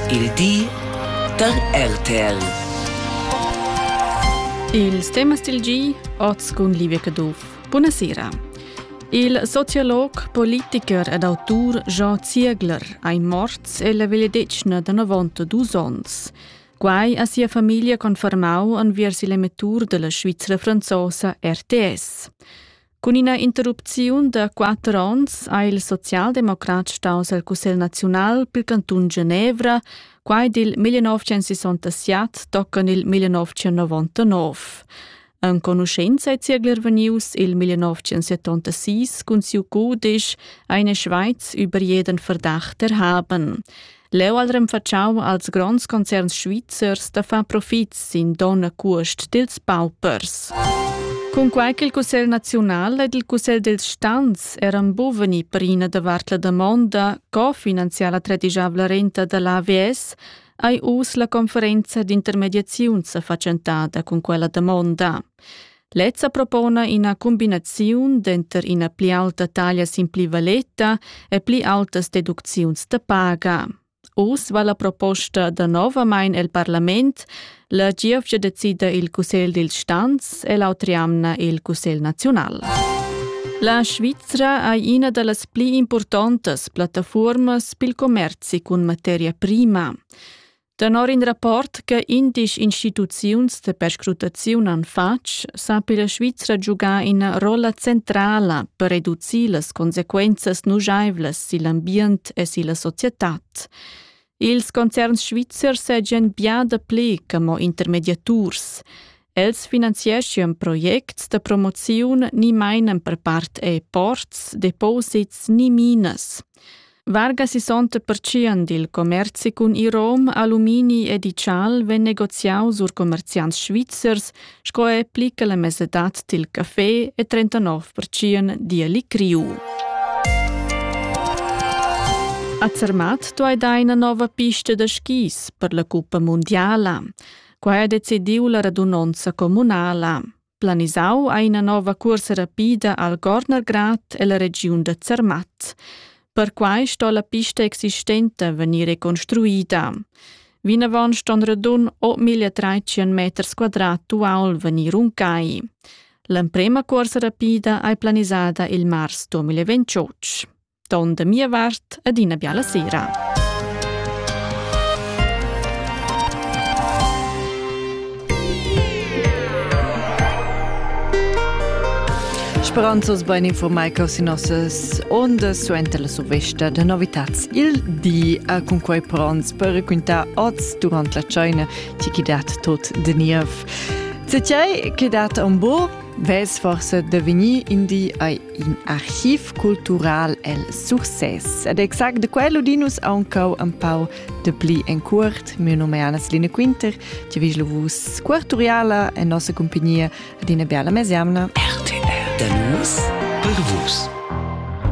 Il di da RTL. Ils temas dil gi oz cun Livia Caduff. Buonasera. Il sociolog, politiker ed autur Jean Ziegler ein morts e la vegliadetgna da 92 onns. Quai ha sia famiglia confermau enviers il emettur della Svizzera franzosa RTS. Cun ina interrupziun da quatter onns ha il socialdemocrat staus el Cussegl naziunal pil cantun Genevra. Quai dil 1967 toccan il 1999. Enconuschenza è ziegler venius il 1976 cun siu cudisch Eine Schweiz über jeden Verdacht erhaben. Leu al renfatschau als gronds concerns svizzers da far profit sin donna cuost dils paupers. Cunquei che il Cussegl nazional ed il Cussegl dels Stans eran buveni per ina davart la damonda co finanziar la tredijavla renta dall'AVS, ei uss la conferenza d'intermediaziun sa fatschentada cun quella damonda. Lezza propona ina cumbinaziun denter ina pli aulta taglia sin pli valeta e pli aultas deducziuns da paga. Uss va la proposta danovamein el parlament, la gievgia decida il Cussegl dil Stanz e l'autri amna il Cussegl naziunal. La Svizra è ina delle pli importanti piattaforme pil commerci con materia prima. Tenor in rapport che indisch instituziuns de perscrutaziun han fatg, sapi la Svizra giugar ina rolla centrala per reducir las consequenzas nujaivlas sil ambient e silla societad. Ils concerns svizzers seigien bia dapli che mo intermediaturs. Els finanzieschan projects da promoziun ni mainan per part er ports, deposits ni minas. Vargas isonta pertschien dil commerzi cun Irom, alumini e digital vegn negoziau sur commerziants svizzers, sco è plica la mesedad dil café e 39% dialic riu. A Zermatt tu hai da ina nova pista da skis per la Cuppa Mondiala. Quai ha decidiu la radunonza communala. Planisau ha ina nova cuorsa rapida al Gornergrad e la regiun da Zermatt. Perquai sto la pista existenta vegnir reconstruida. Vinavon ston radun 8030 meters quadrat uaul vegnir runcai. L'emprema cuorsa rapida ei planisada il mars 2028. ton da mia vart ed ina biala sera. Speranzos ben informai che si nossas ondas suenter la sovesta da novitats il di a cun quei pronts per raccontar oz durant la China ti chi dat tot de niev. Se tiai che dat un bo, ves forse de venir in di ai in archiv cultural el Success. Ed exact de quello di nus aunchau un pau de pli en cuort. Mio nome è Anna-Celine Quinter, ti vis vus quarturiala en nossa compagnia ad una bella mesiamna. RTL. Da nus per vus.